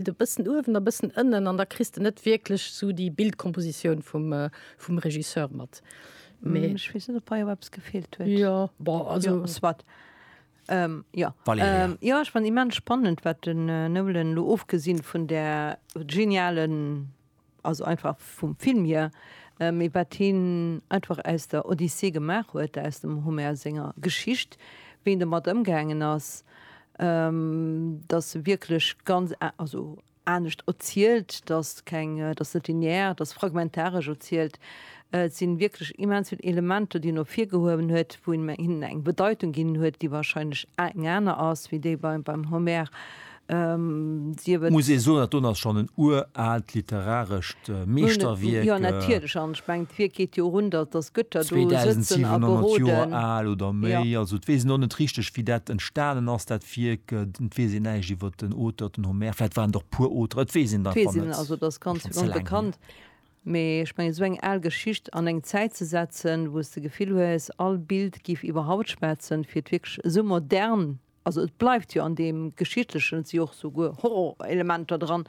De bëssen uewen a bëssen ënnen an da kriss de net wierklech sou déi Bildkompositioun vum vum Regisseur mat. Mee ech weess net op hei och eppes gefeelt huet. Jo bon also jo soit. Ähm jo. Valerija. Jo ech fannt immens spannend wat den Nolan elo ofgesinn vun där genialen also einfach vum Film hier, mee wat hien einfach aus der Odyssee gemaach huet, aus dem Homer senger Geschicht, wéi en domat ëmgaangen ass, dass se wierklech ganz, also anescht erzielt, dass keng, dass net linear, dass fragmentaresch erzielt. Et si wierklech immens vill Elementer, déi en ervirgehuewen huet, wou en hinnen eng Bedeitung ginn huet, déi wahrscheinlech eng aner ass wéi déi beim Homer, Muss ee soen, dat do ass schonn en uraalt literarescht Meeschterwierk. 2.700 Joer al oder méi. Also et weess een och net richteg, wéi dat entstanen ass, dat Wierk. Et weess een näischt iwwer den Auteur, den Homer. Vläicht waren et och puer Auteren, et weess een et einfach net. Also et ass ganz onbekannt. Mee ech mengen, esou eng al Geschicht an eng Zäit ze setzen, wou s de d'Gefill hues, all Bild géif iwwer Haut schwätzen, fir et wierklech esou modern Also et bleift jo an deem Geschichtlechen, et si jo och souguer Horrorelementer dran,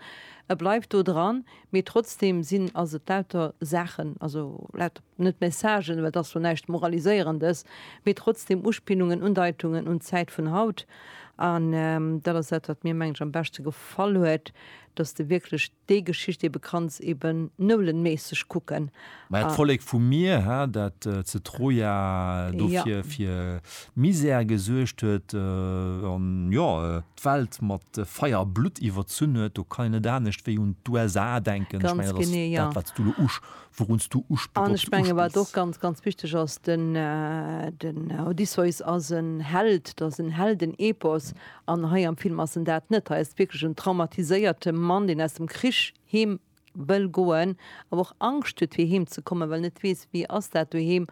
e bleift do dran, mee trotzdeem sinn, ass et lauter Saachen, also lauter, net Messagen, well et ass jo näischt Moraliséierendes, mee trotzdeem Uspillungen, Undeitungen un d'Zäit vun haut. An dat ass dat, wat mir, mengen ech, am beschte gefall huet, dass de wierklech. Déi Geschicht ebe kanns ebe noulenméisseg kucken. Mä et Vollek vu mir, hä, dat ze Troja dofir fir Misär gesuergt huet an, jo, d'Welt mat Feier a Blutt iwwerzunn huet, do kann een net anescht wéi un d'USA denken. Ech mengen, dat ass dat, wat s du elo usch, wourun s du usch, An ech mengen, wat och ganz, ganz wichteg ass, den, den Odysseus ass en Held, dat ass en Heldenepos. An hei am Film ass en dat net. Hei ass et wierklech en traumatiséierte Mann, deen aus dem Krich heem wëll goen, awer och Angscht huet fir heem ze kommen, well en net weess, wéi ass dat doheem.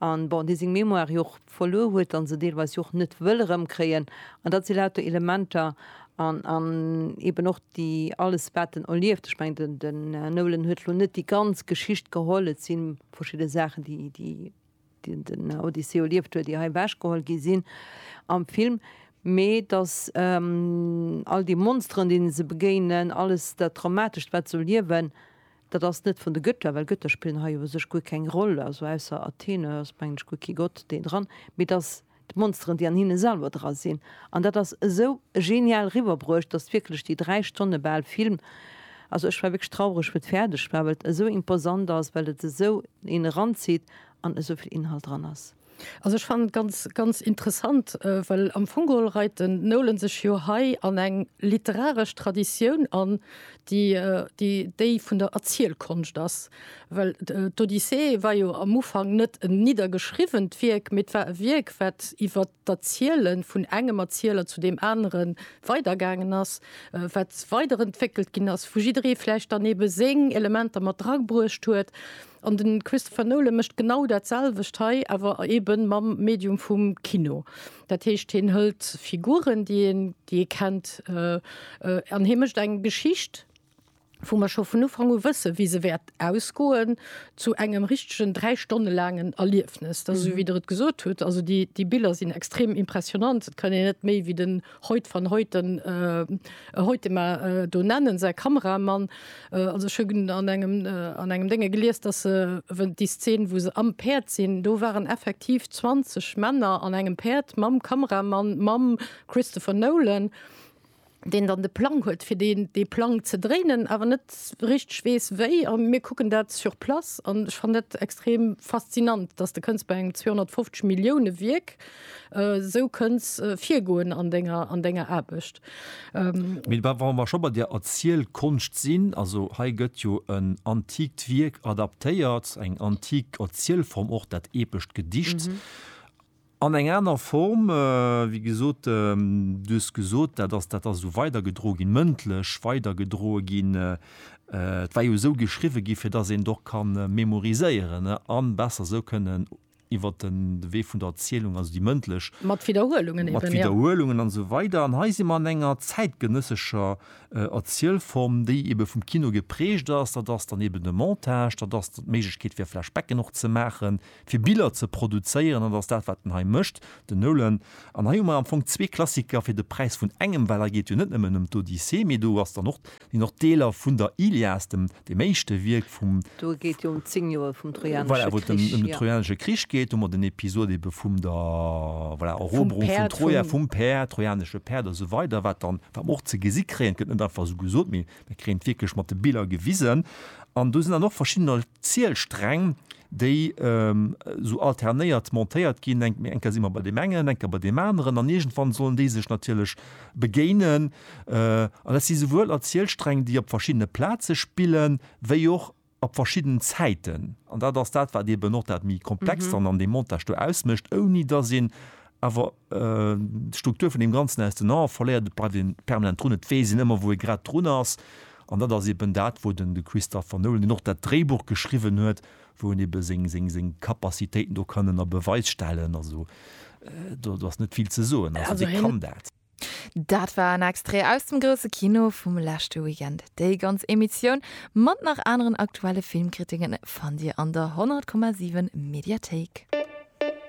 A bon, dee seng Mémoire jo och verluer huet a se deelweis jo och net wëll erëmkréien. An dat si lauter Elementer an an eben och déi alles wat en erlieft. Ech mengen den Nolan huet elo net déi ganz Geschicht geholl, et si verschidde Saachen déi déi. déi den Odysseus erlieft huet, ier hei ewechgeholl gi sinn am Film, mee datt all déi Monsteren, deene se begéinen, alles dat Traumatescht, wat se elo liewen, dat ass net vun de Götter, well Götter spillen hei u sech guer keng Roll, also ausser Athene ass, mengen ech, guer kee Gott, deen dran, mee datt d'Monsteren déi an hinne selwer dra sinn, an dat ass esou genial riwwerbruecht, dass wierklech déi 3 Stonne bal Film, also ech war wierklech traureg wou et fäerdeg war, well et esou imposant ass, well et esou een eranzitt an esou vill Inhalt dran ass. Also ech fannen et ganz, ganz interessant, well am Fong geholl reit den Nolan sech jo hei an eng literaresch Traditioun an, déi déi vun der Erzielkonscht ass. Well d'Odyssee war jo am Ufank net en niddergeschriwwent Wierk, mee et war e Wierk, wat iwwer d'Erziele vun engem Erzieler zu deem anere weidergaangen ass, wat weiderentwéckelt ginn ass, wou jidderee vläicht dann eebe seng Elementer mat dragruecht huet. An de Christopher Nolan mécht genau dat selwecht hei, awer eebe mam Medium vum Kino. Dat heescht, hien hëlt Figuren, déi ee kennt, an hie mécht eng Geschicht, wou mer scho vun Ufank u wëssen, wéi se wäert ausgoen, zu engem richtegen dräi Stonne laangen Erliefnes. Dat ass esou, wéi Der et gesot hutt. Also déi, déi Biller sinn extrem impressionnant. Et kann een net méi wéi den Hoyt van Hoyten, äh, Hoytema, äh, do nennen, säi Kameramann. Äh, also ech hunn an engem, äh, an engem Dénge gelies, dass se, wou déi Szene, wou se am Päerd sinn, do waren effektiv 20 Männer an engem Päerd mam Kameramann, mam Christopher Nolan. deen dann de Plang huet fir deen dee Plang ze dréinen, awer net richteg weess wéi. A mir kucken dat sur place an ech fannen dat extrem faszinant, datt de kënns bei engem 250 Millioune Wierk esou kënns virgoen an denger an denger Aarbecht. Mee wa wa mer scho bei der Erzielkonscht sinn, also hei gëtt jo en antikt Wierk adaptéiert, eng antik Erzielform och, dat epescht Gedicht. An eng aner Form, wéi gesot, du hues gesot, dat ass, dat ass esou weidergedroe ginn, mëndlech weidergedroe ginn. Et war jo esou geschriwwe ginn, fir datt een et och ka memoriséieren a besser esou kënnen iwwer de Wee vun der Erzielung, also déi mëndlech. Mat Widderhuelungen eben, jo. Mat Widderhuelungen an esou weider. An hei si mer an enger zäitgenëssescher Erzielform, déi ebe vum Kino geprägt ass. Dat ass dann eben de Montage, dat ass d'Méiglechkeet, fir Flashbacken och ze maachen, fir Biller ze produzéieren, dat ass dat wat en hei mécht, den Nolan, an hei hu mer am Fong zwee Klassiker fir de Präis vun engem, well hei geet jo net nëmmen ëm d'Odyssee, mee do ass dann och, sinn och Deeler vun der Ilias, dem dem éischte Wierk vum, Do geet jo ëm zéng Joer vum Trojanesche Krich, voilà, wou et ëm den Trojanesche Krich geet, do hu mer den Episod ebe vum der, voilà, Eroberung vun Troja, vum Päerd, trojanesche Päerd a sou weider, wat dann, wat mer och ze gesi kréien, et gëtt net einfach esou gesot, mee mir kréien et wierklech mat de Biller gewisen, an do sinn dann och verschiddener Zielsträng, déi esou alternéiert montéiert ginn, eng eng Kéier si mer bei deem engen, eng Kéier bei deem aneren an iergendwann sollen déi sech natierlech begéinen. An dat si souwuel Erzielsträng, déi op verschiddene Plaze spillen, wéi och op verschiddenen Zäiten. An dat ass dat, wat eeben och dat méi Komplext dann an deem Montage do ausmécht, ouni datt een awer D'Struktur vun deem Ganzen aus den Aen verléiert, et bleift ee permanent drun, et weess een ëmmer, wou ee grad drun ass. An dat ass eben dat, wou de Christopher Nolan, deen och dat Dréibuch geschriwwen huet, wou en ebe seng Capacitéiten do kann ënner Beweis stellen. Also do ass net vill ze soen, also dee kann dat. Dat war en Extrait aus dem grousse Kino vum leschte Weekend. Déi ganz Emissioun mat nach aneren aktuelle Filmkritiken fannt Dir an der 100,7 Mediathéik.